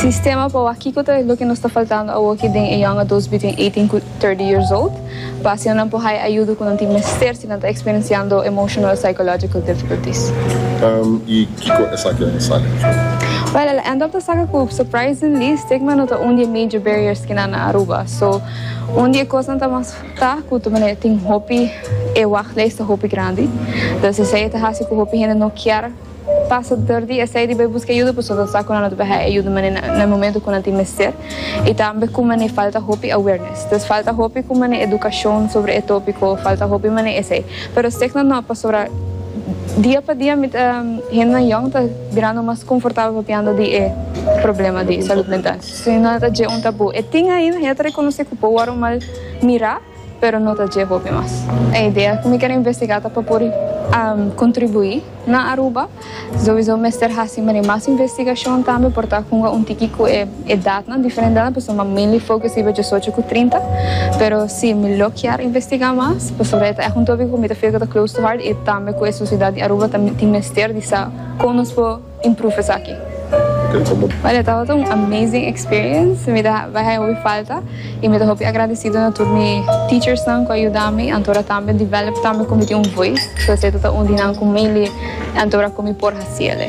Sistema pa wak kiko ta loke nos ta faltando awoki den e young adults between eighteen cu thirty years old pa asina nan por haya ayudo cu nan tin mester si nan ta experienciando emotional o psychological difficulties. Y kico esaki a insaki cu su? Well el a end up ta saka cu surprisingly stigma no ta un di e major barriers ki nan na Aruba. So un di e cosnan ta mas ta cu ta manera tin hopi e wachtlijst ta hopi grandi. Dus esey e ta haci cu hopi hende no kier. Pasa tur di esei riba e buska yuda pasobra bo sa ku nan lo ta baha e yuda manera na e momento ku nan tin mester i tambe ku manera falta hopi awareness. Nos falta hopi ku manera edukashon sobra e topiko, falta hopi manera esei. Pero stegna no, pasobra dia pa dia mi ta hendenan yòn ta birando mas konfortabel papiando di e problema di salud mental. Sin nan ta dje un tabú. E tin ainda hende ta rekonosé ku por wòrdu mal mirá. Pero no ta dje hopi mas. E idea cu mi quier investiga ta pa por contribui na Aruba. Sowiso mester haci mari mas investigacion tambe por ta hunga un tiki cu e edadnan, diferentenan, pasobra mi a mainly focus riba diesocho cu trinta. Pero si, mi lo kier investiga mas pasobra e ta echt un topico cu mi ta feel cu ta close to heart y tambe cu e sociedad di Aruba ta tin mester di sa con nos por. improve esaki. Maria, tabata un amazing experience, mi ta bai haña hopi falta y mi ta hopi agradecido na tur mi teachersnan cu a yuda mi anto ora tambe develop tambe cu mi tin un voice, so esey ta un di nan cu mainly anto ora cu mi por haciele.